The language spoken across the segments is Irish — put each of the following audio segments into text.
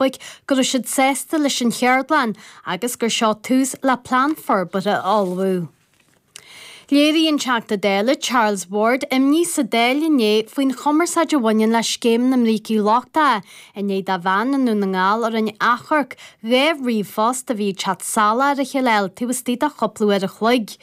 Eorpaigh go raibh siad sásta leis an cheardlann agus gur seo tús le plean forbartha a ullmhú. Léirigh an Teachta Dála Charles Ward imní sa Dáil inné faoin chumarsáid a bhaineann le scéim na mbrící lochtacha i ndiaidh do bhean i nDún na nGall a rinne achomharc dhá ríomhphost a bhí ag teacht salach ar a chéile a fháil taobh istigh de chúpla uair a chloig.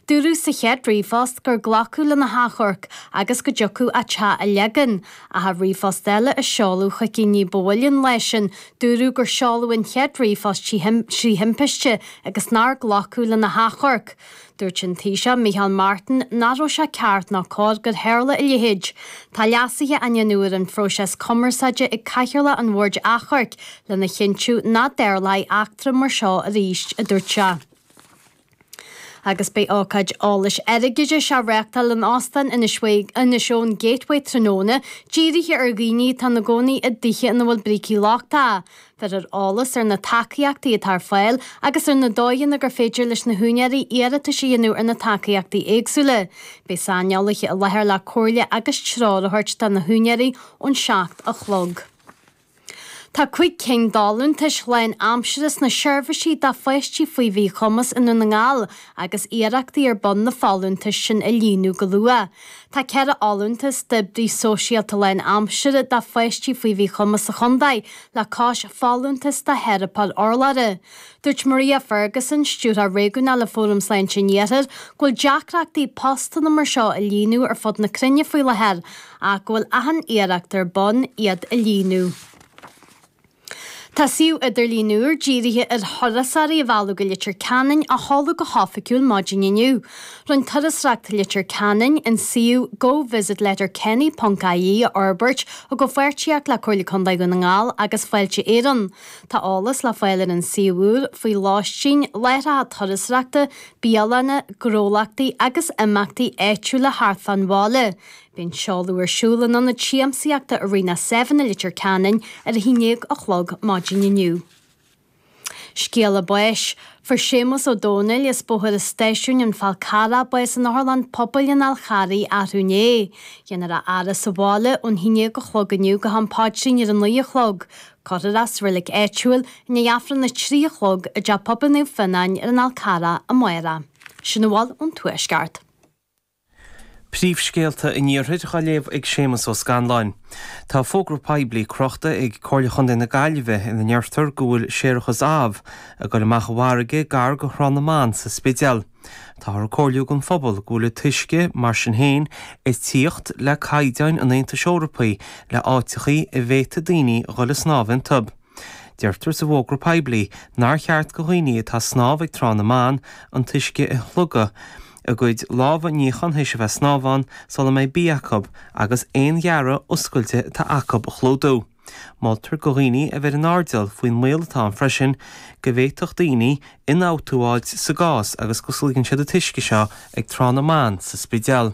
Dúradh sa chéad ríomhphost gur glacadh lena hachomharc agus go dtiocfadh a teach a leagan. Ach i ríomhphost eile a seoladh chuici ní ba mhoille an lae sin, dúradh gur seoladh an chéad ríomhphost trí thimpiste agus nár glacadh lena hachomharc. Dúirt an Taoiseach Micheál Martin nach raibh sé ceart ná cóir gur tharla a leithéid. Tá leasuithe á ndéanamh ar an phróiseas cumarsáide ag Cathaoirleach an Bhoird Achomhairc lena chinntiú nach dtarlóidh eachtra mar seo arís, a dúirt sé. Agus beidh ócáid eolais airgeadais á reáchtáil in Óstán Inis Eoghain Gateway tráthnóna, dírithe ar dhaoine atá ina gcónaí i dtithe ina bhfuil brící lochtacha. Bhéarfar eolas ar na tacaíochtaí atá ar fáil agus ar na dóigheanna gur féidir leis na húinéirí iarratais a dhéanamh ar na tacaíochtaí éagsúla. Beidh saineolaithe i láthair le comhairle agus treoir a thabhairt do na húinéirí ón seacht a chlog. Tá cúig cinn d'fholúntais lánaimseartha sna seirbhísí do pháistí faoi mhíchumas i nDún na nGall agus iarrachtaí ar bun na folúntais sin a líonadh go luath. Tá ceithre fholúntas d'oibrí sóisialta lánaimseartha do pháistí faoi mhíchumas sa chontae le cois folúntas do theiripeoir urlabhra. Dúirt Maria Ferguson, Stiúrthóir Réigiúnach le Fóram Sláinte an Iarthair, go bhfuil deacrachtaí postanna mar seo a líonadh ar fud na cruinne faoi láthair ach go bhfuil achan iarracht ar bun iad a líonadh. Tá suíomh idirlín úr dírithe ar thurasóirí a mhealladh go Leitir Ceanainn á sheoladh go hoifigiúil maidin inniu. Rinne Turasóireacht Leitir Ceanainn an suíomh Go Visit Letterkenny ponc IE a fhorbairt i gcomhpháirtíocht le Comhairle Contae Dhún na nGall agus Fáilte Éireann. Tá eolas le fáil ar an suíomh úr faoi lóistín, láithreacha turasóireachta, bialanna, gnólachtaí agus imeachtaí áitiúla thart fán bhaile. Beidh an seoladh ar siúl in ionad siamsaíochta Arena Seven i Leitir Ceanainn ar a 11 a chlog maidin inniu. Scéala báis. Fuair Séamus Ó Domhnaill, as Bóthar an Stáisiúin an Fál Carrach, bás in Otharlann Pobail an Fháil Charraigh, arú inné. Déanfar a fhaire sa bhaile ón 11 a chlog inniu go ham paidrín ar a 9 a chlog. Curtha sa reilig áitiúil i ndiaidh Aifreann a trí a chlog i dteach pobail Naomh Fionáin ar an Fhál Charrach amárach. Sin a bhfuil ón Tuaisceart. Príomhscéalta an Iarthair á léamh ag Séamus Ó Scanláin. Tá fógra poiblí crochta ag Comhairle Chontae na Gaillimhe ina ndeirtear go bhfuil séarachas amh ag dul amach i bhfarraige gar go Thrá na mBan sa Spidéal. Táthar ag comhairliú don phobal go bhfuil an t-uisce, mar sin féin, ag tíocht le caighdeáin an Aontais Eorpaigh le áiteachaí a bhféadfaidh daoine a dhul a snámh iontu. Deirtear sa bhfógra poiblí nár cheart go dhaoine atá a snámh ag Trá na mBan an t-uisce a shlogadh a gcuid lámha a níochán théis a bheith ag snámh ann sula mbeidh bia acu agus aon ghearradh oscailte atá acu a chlúdú. Moltar go dhaoine a bheith in airdeall faoin mbaol atá ann freisin go bhféadfadh daoine ionfhabhtú a fháilt sa gcás agus go sloigeann siad an t-uisce seo ag Trá na mBan sa Spidéal.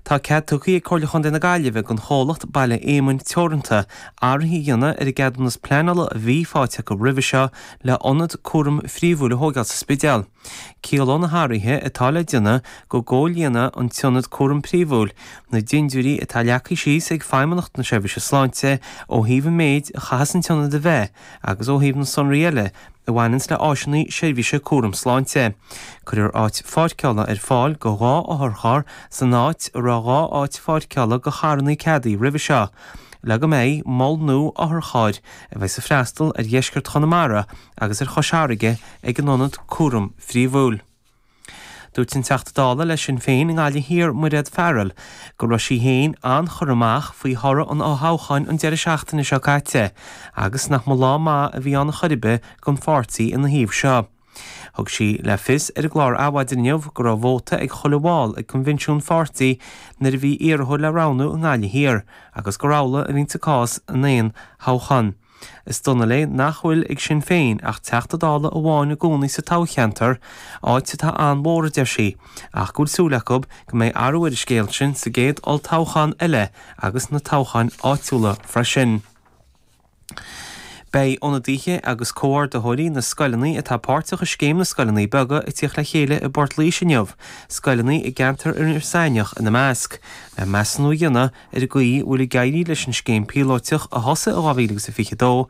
Tá cead tugtha ag Comhairle Chontae na Gaillimhe don chomhlacht Baile Éamoinn Teoranta athruithe a dhéanamh ar an gceadúnas pleanála a bhí faighte acu roimhe seo le hionad cúraim phríomhúil a thógáil sa Spidéal. Ciallóidh na hathruithe atá le déanamh go gcomhlíonfaidh an t-ionad cúraim príomhúil na dindiúirí atá leagtha síos ag Feidhmeannacht na Seirbhíse Sláinte ó thaobh an méid a chaitheas an t-ionad a bheith agus ó thaobh na sonraí eile a bhaineanns le áiseanna seirbhíse cúraim sláinte. Cuirfear áit pháirceála ar fáil go dhá otharcharr san áit a raibh dhá áit pháirceála go charranna ceadaithe roimhe seo le go mbeidh mol nua otharchairr a bheas ag freastal ar dheisceart Chonamara agus ar Chois Fharraige ag an ionad cúraim phríomhúil. Dúirt an Teachta Dála le Sinn Féin i nGaillimh Thiar Mairéad Farrell go raibh sí féin an-chur-amach faoi thoradh an fhothoghcháin an deireadh seachtaine seo caite agus nach mba lá maith a bhí ann chor ar bith don pháirtí ina thaobh seo. Thug sí le fios ar an gclár Adhmhaidin inniu go raibh vóta ag chuile bhall ag coinbhinsiún an pháirtí nuair a bhí iarrthóir le roghnú i nGaillimh Thiar agus gur amhlaidh a bhíonns an cás in aon thoghchán. Is dona léi nach bhfuil ag Sinn Féin ach Teachta Dála amháin i gcónaí sa toghcheantar, áit atá an-mhór, a deir sí, ach go bhfuil súil acu go mbeidh athrú ar an scéal sin sa gcéad olltoghchán eile agus sna toghcháin áitiúla freisin. Beidh ionadaithe agus comhordaitheoirí na scoileanna atá páirteach i Scéim na Scoileanna Beaga ag tíocht le chéile i bPort Laoise inniu, scoileanna i gceantar Iorras Aithneach ina measc, le measúnú a dhéanamh ar an gcaoi a bhfuil ag éirí leis an scéim phíolóiteach a thosaigh in 2022.